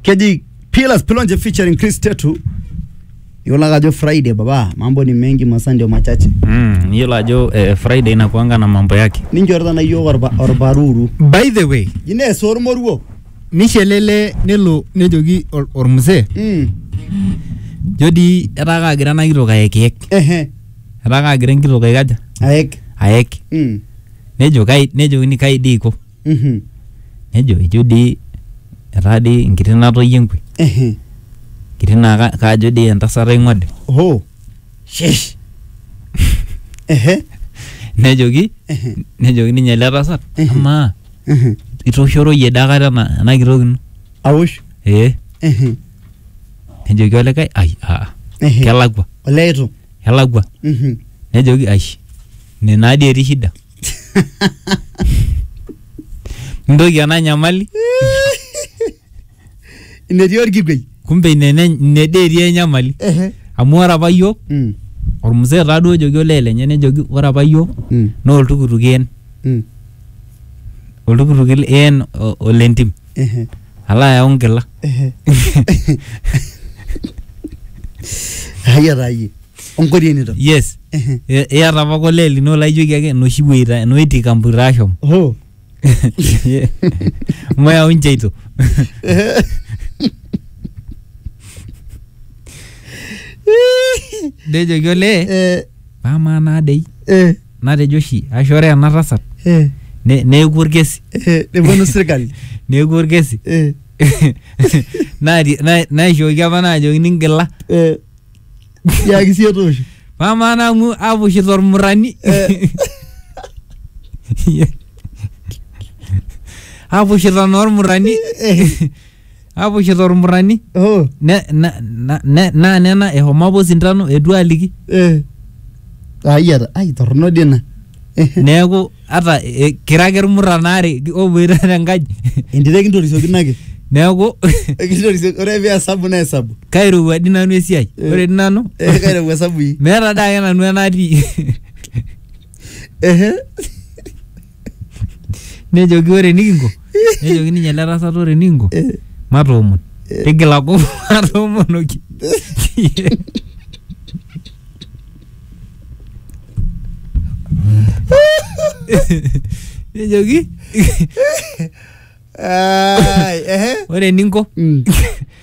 keji Pillars Pilonje featuring Chris Tetu. Iyiolo ake ajo Friday baba, mambo ni mengi masaa ndio machache. Mm, iyiolo ajo eh, Friday inakuanga na mambo yake. Ninchorita na iyiook orba- orbaruru. by the way Ines ormoruo. nishelele nelo nejoki or- ormzee Mm. jo dii etaa kaagira ena kitok ayekiek Ehe. etaa kaagira enkitok aikaja Aek. aek Mm. nejo kai nejokini kai dii iko Mhm. nejo ejo dii etaa dii nkiti natoyie nkwe Ehe. nkiti naa ka- kajo dii entasat aing'ode Oho. Shesh. Ehe. nejoki Ehe. nejoki ninye ele tasat Ehe. amaa Ehe. itoshoroyie daa kata ena ena kitok ino Awosh. ee Ehe. nejoki olikae ai aa Ehe. kelakua Olee itu. kelakua Mhm. nejoki ai ine naa dii etii shida Ntoki ena nyamali inetii orkikwei kumbe ine ene- ine dee etii enyamali Ehe. amu ore apa yiok Mm, ormzee taa duo ojoki olee lenye nejoki ore apa yiok mm, naa oltukutuk een mm, oltukutuk een o- olentim ehe. alo ayau nkila ayia taa yie onkorienito yes Ehe. I- iyata apa kole lino laijoki ake enoshi weita enoiti kamputa ashom Hoo. mayau ncheito nejoki olee Eh, amaa naa dei eh, natejo oshi ashu ore ena tasat eh, ne- neeku orkesi eh, neponu sirkali neeku orkesi eh, Naati- na- naishooki apa naajoki ningila eh, tiaki siyie toosho amaa naa amu apushito ormurani Eh. apushito naa ormurani Eh. Apushi tormurani Oh, ne, na, na, ne, naa nena ehomo apa osintano etu aliki eh. Ai ata, ai torrono dii ina. neeku ata e, kira ake irmuran aare oboita tenkaji Entito ekintorisiokin ake. neeku Ekintorisiokin, ore pee esabu naa esabu. kairowua di nanu esiai Eh. ore di nanu Eh, kairowua esabu hii. meeta dake nanu enatii Ehe. nejoki ore enikinko nejoki ninye ele tasat ore enikinko matoomon tigila kop matoomonoki nejoki Ai, ehe. ore eninko Mm.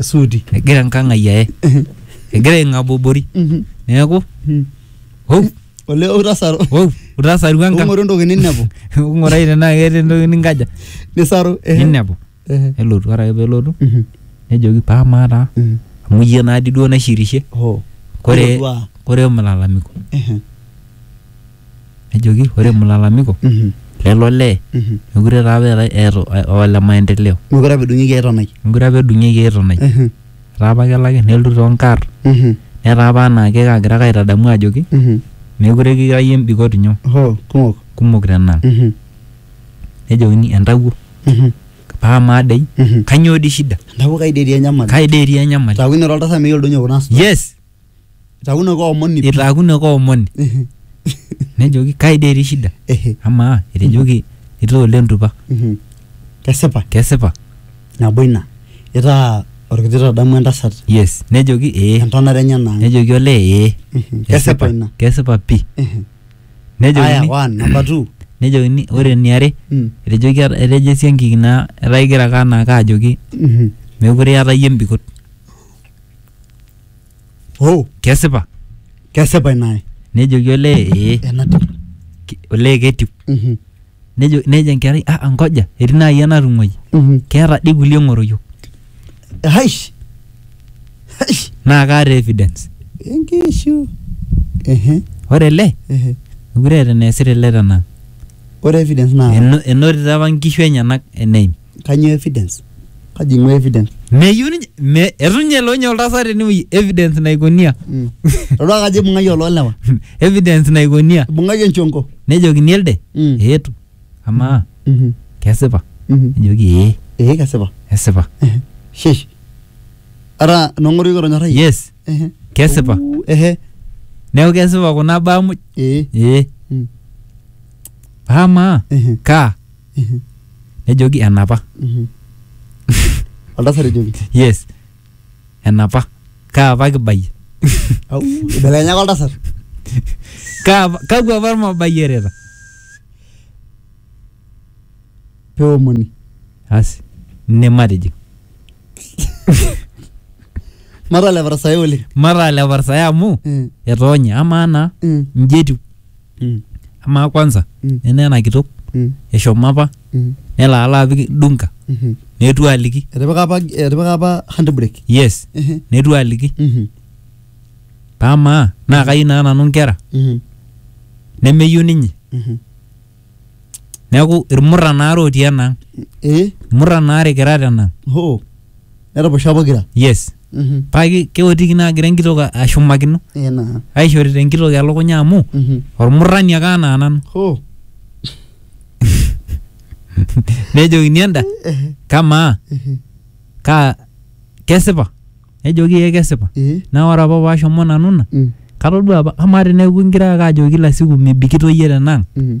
esuuti egira enkang ai aye egira aing'abobori Mhm. neeku Mhm. hou olee utasaru hou utasarua enkang ung'oru entoki ninepu ng'urai tenaa keeta entoki ninkaja nisaru ehe. ninepu Ehe. nelotu ore ake pelotu Mhm. nejoki paa maa taa Mhm. amu iyie naadi duo naishirishe Hoo. kore Ilo duaa. kore mlalamiko Ehe. nejoki ore mlalamiko Mhm. lelo lee Mhm. mekure taa apa eetae eeta o- ole maendeleo Mekure apa edung'ieki ai tonai. mekure apa edung'ieki ai tonai Mhm. etaa apa kelaki nelotu toonkarr Mhm. netaa apa anaake kaagira ake aitadamu ajoki Mhm. mekure kira iyie mbikot nyoo Hoo, kumok. kumok tenang Mhm. nejokini entawuo Mhm. paa maa dei Mhm. kanyoo dii shida Entawuo kai dii etii enyamali. kai dei etii enyamali Taaku inira oltasat miyiolo doi ninye kuna asuja. yes Itaakunoki omoni pii. itaakunoki omoni Ehe. nejoki kai dee etii shida Ehe. amaa etejoki itaa ole ntupa Mhm. Kesipa. kesipa Nabo ina. Itaa olkiti tadamu entasat. yes nejoki ee Entonata enye naa. nejoki olee ee Mhm. Kesipa ina. kesipa pii Ehe. Aya nejokini one, number two. nejokini ore eniare Mm. etejoki etejo esiankiki naa etaa igira ake anaake ajoki Mhm. meekure iyata iyie embikot oh kesipa kesipa ina ae nejoki olee ee enatiu ki- olee ketiu Mhm, nejo nejo enkerai ah ngoja etii naaji enatung'uai mhm. keeta dii kulie ng'oroyio haish haish naa kaata evidence enkishu ehe ore ele ehe mekure eeta eneesita ele tenang ore evidence naa Eno- enotito apa nkishu enyenak eneim Kanyoo evidence? Kaji ing'ua evidence? Meyieu ninye me etu ninye elo ninye oltasat tenewueji evidence naikonia. Mm. Todua kajo ibung'aki oloolewa. evidence naikonia. Ibung'aki enchonko. Nejokini elde Mm. eetu amaa Mhm. kesipa? Mhm. Nejoki ee Ee kesipa. esipa. Ehe. Shesh. Ara nong'oru kitonyorrayie. Yes Ehe. kesipa. Uu, Ehe. Neeku kesipa kuna baa muj. Ee. Ee Mm. amaa Ehe. kaa nejoki enapa oltasat ejoki yes enapa kaa apa kibayie au ibelekenyaka oltasat kaa apa- kakwa apa irmabayiereta peomoni asi ine matijing matalepa tasai oleng mataa leparsae amu Mm, etoonye amaa naa mm. nji etiu Mm. amaa kwanza Mm. nena ena kitok Mm. eshomo apa Mm. nelo alo apik dunka Mhm. netu aliki etipika apa etipika apa handbrake yes Ehe. netu aliki Mhm. pamaa naa kayieu naa nanu nkera Mhm. nemeyieu ninye Mhm. neeku irmurran aare otii enaang Eh? irmurran aare kira tenang hoo neraposho pokira yes Mhm. paa ki- keotiki naa agira enkitok a- ashumakino Eh, naa aishorita enkitok elukunya amu Mhm. ormurrani ake anaa nanu Hoo. nejokini enda Eh, kamaa eh, kaa kesipa nejoki ee kesipa eh. naa ore apa paashomo nanu ina Mm, katodua apa amaa teneeku ingira ake ajoki kila siku mibikito iyie tenang mm.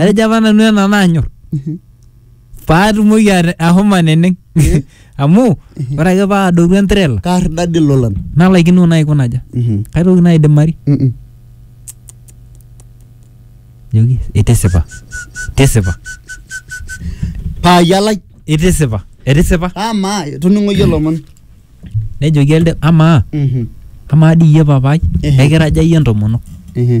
atejo apa nanu ena naanyor Mhm. paatumoki ate- ahomo aneneng amu ore ake paadotu entrela kaar dadi lolan nalaikino naikunaja Mhm. kaitoki naidimari Mhm. joki itisipa tisipa paayalai itisipa etisipa amaa toning'oyie lomon nejoki elde amaa Mhm. amaa dii iyie papai Ehe. ekiraja iyie entomonok Mhm.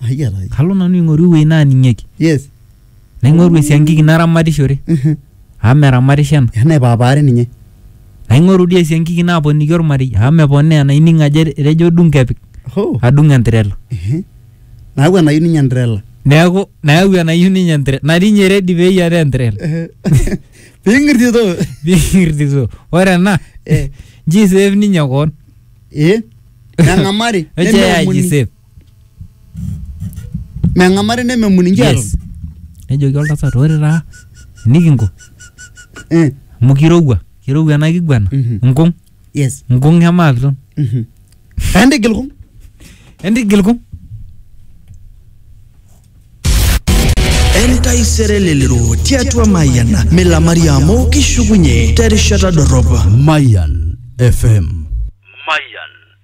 ayiarai kalo nanu aing'oru ewueji naaning'ieki yes naing'oru esiankiki naramatishore Mhm. amu meramatisho ena ena ipaapaari ninye naing'oru dii esiankiki naaponiki ormarei amu meponaa ena ining ajo etejo dung kepik Hoo. adung entirela Ehe. naaku enayu ninye entrela neeku nayau enayieu ninye entirela natii ninye redi peyiataa entirela ping'irtito Ping'irtito. ore ena Eh. nji save ninye koon ee nang'amari Eche ya nemeomuni. jisave. meng'amari nememut ninche Yes. aton nejoki oltasat ore taa nikinko Eh, amu kirowua kirowua ena kiguana Mhm. nkung yes nkung emaapiton Mhm. entigil kung entigil kung entaisere lelero tiatua mayian milamari amu kishukunye terishata dorrop Mayan FM. Mayan